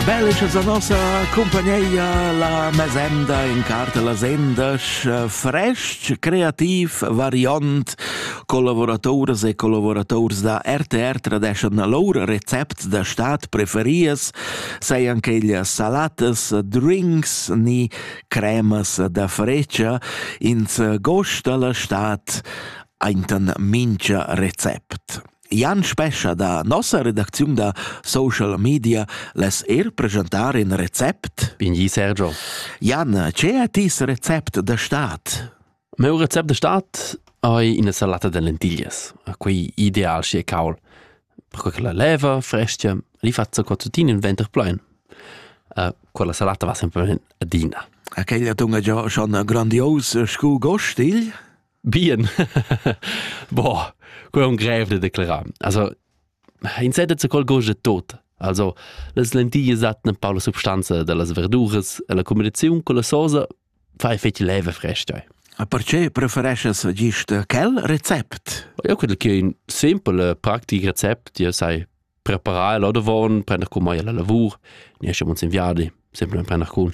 Bellic a nossa compagneia la mesenda in carta la sendas fresc, creativ, variant, collavoratoras e collaborators da RTR tradeschan lur recept da stat preferias, sei anche il salatas, drinks ni cremas da frecia, ins gost alla stat, aintan mincha recept. Jan Spescha da nossa redacziun da social media les er presentar in recept. Binghi Sergio. Jan, ce è tis recept da stat? Meu recept da stat hai ina salata de lentillas. Quei ideal si e caul. Perché che la leva, frestia, li faccio cottutin in venter plein. Uh, quella salata va sempre adina. Aquella tunga già schon grandios scu gostigl? Bien Boah, quei un grev de declarar. Also, in sedet se col goge tot. Also, las lentillas dattan per la substanza dellas verduras e la combinaziun con la sosa fai fetg leva fresca. Perché prefereschas gist quel recept? Eu credo che un simpel praktik recept ja sai preparar l'odavon, prender con mai la lavur, ne esce uns in viadi, simplement prender con.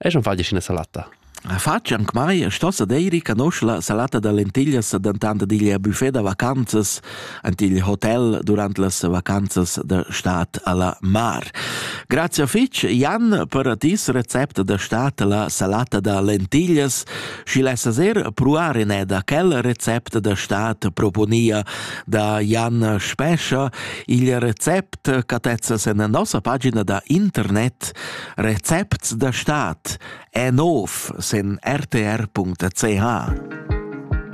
Eschan fadisch üna salatta. Fatsch anc mai e stossa deiri canosc la salata da lentiglias, dentant dad igl buffet da vacanzas ant igl hotel durant las vacanzas da stad a la mar. Grazia fitg, Jan, per tis recept da stad la salata da lentiglias. Schi lessas er pruar in da quel recept da stad proponia da Jan Spescha. Il recept cattezzas en nossa pagina da internet Recepts da stad è nov sen rtr.ch.